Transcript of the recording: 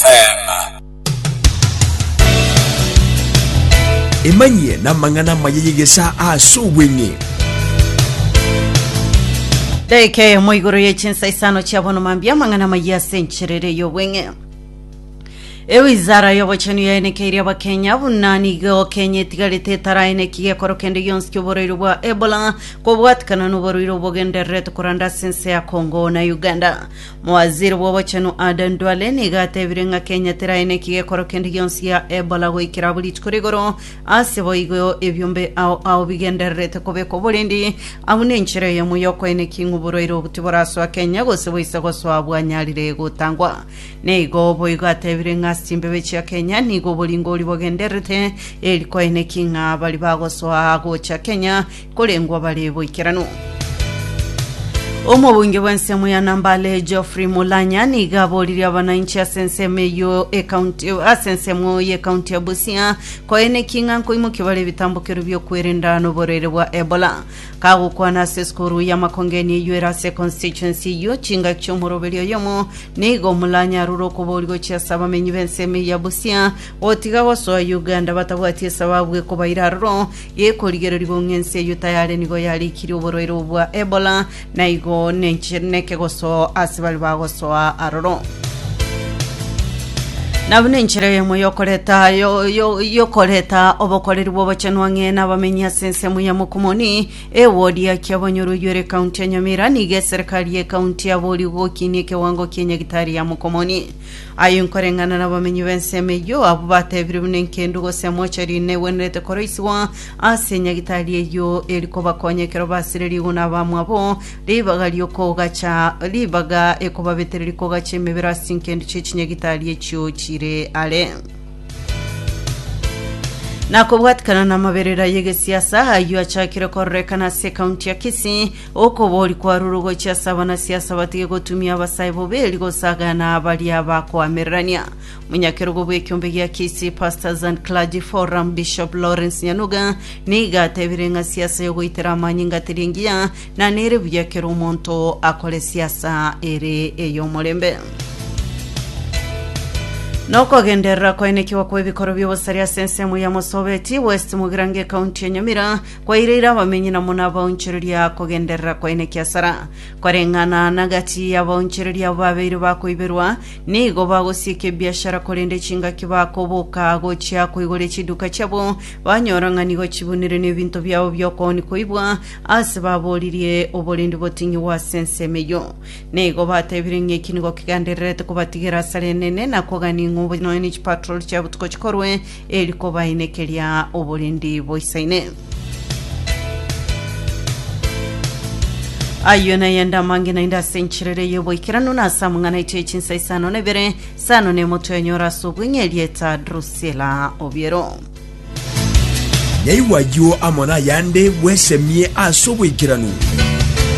Teema. Emanyie namang'ana amaya y'egesaa ase obweng'e. Daika eyemo igoro ye chinsa isano chia bono mambia amang'ana amaya ase enchera ere y'obweng'e ewizara y'obochenu yaenekeirie abakenya buna nigo kenya etigarete etaraeneki gekoro kende gionsi ki'oborwaire bwa ebola kobwatikana n'oborwaire obogendererete koranda ase ense ya congo na uganda Mowaziri bw'obochenu Aden Duale nigo atebire ng'a Kenya terae neki gekoro kende gionsi gia Ebola goikera abwo rituko rigoro ase boigo ebiombe ao ao bigendererete kobekwa oborendi. Abwo nenchera eyemo y'okoeneki ng'u borwaire obo tiborasoa Kenya gose boise gosoa bwanyarire gotangwa. Neigo boigo atebire ng'a ase chimbebe chia Kenya nigo oboringo oria bogendererete eri koeneki ng'a bari bagosoa gocha Kenya korengwa bare boikeranu. Omobunge bw'ensemo ya Nambale Geoffrey Mulanya niga aboririe abanainchi ase ensemo eyio ekaunti ase ensemo y'ekaunti ya Busia koenekia ng'a nkoimokia bare ebitambokero bi'okwerenda noborwaire bwa Ebola. Kagokwana ase esukuru y'amakongeni eyio ere ase constituency eyio chingaki chi'omoroberi oyomo, nigo Mulanya arure okobori gochia ase abamenyi b'ensemo eyio ya Busia gotiga gosoa Uganda batabwati esababu ekobaira aroro gekorigereria gong'a ense eyio tayare nigo yarikirie oborwaire obwo bwa Ebola, na igo nenche- nekegosoo ase baria bagosoa aroro. Na buna enchera eyemo yokoreta yo- yo- yokoreta obokoreri bw'obochenu ang'e nabamenyi ase ensemo ya Mokomoni, ewodi ya Kiabanyoro eyio ere County ya Nyamira, nigo eserikari y'ecounty yaboria gokinia ekewango kia nyagitari ya Mokomoni. Aye nkoreng'ana n'abamenyi b'ensemo eyio, abwo batebire buna enkendu gose emochari negwenerete koroisigwa ase nyagitari eyio eri kobakonya ekero basire riguna abamwabo, ribaga ri'okogacha ribaga ekobabetera rikogacha emebere ase chinkendu chie chinyagitari echio chire are. Nakobwatikana namaberera y'egesiasa ayio achakire kororekana ase ekaunti ya Kisii Okobori kwarure ogochia ase abanasi ase abatige gotumia abasae boberi gosagana baria bakoamererania. Monyakerogo bw'ekiombe gia Kisii Pastors and Clergy Forum Bishop Lawrence Nyanuga nigo atebire ng'a siasa y'ogoitera amanyinga teri engiya na nere buya kera omonto akore siasa ere ey'omorembe. Nokogenderera koenekigwa kw'ebikoro bi'obosari ase ensemo ya Mosobeti West Mugirango ecounty ya Nyamira Kwaireire abamenyi na buna abaonchoreria kogenderera kwaine kiasara, koreng'ana nagati y'abaonchoreria abo babeire bakoiberwa, nigo bagosieka ebiashara korende chingaki bakoboka gochia koigoria chiduka chiabo, banyora ng'a nigo chibunire nebinto biabo bi'okooni koibwa aase baboririe oborendi botinyigwe ase ensemo eyio. Nigo batebire ng'a eki nigo kegendererete kobatigera asare enene na kogania ng'a obonene chipatroli chia botuko chikorwe eri kobainekeria oborindi boisaine. Ayio nayende amange naende ase enchiriri y'oboikeranu na ase amang'ana aito ye chinsa isano na ibere, sano na emotwe enyora ase obweng'e erieta Drusila Obiero. Naigwa ayio amo nayande bwesemie ase oboikeranu.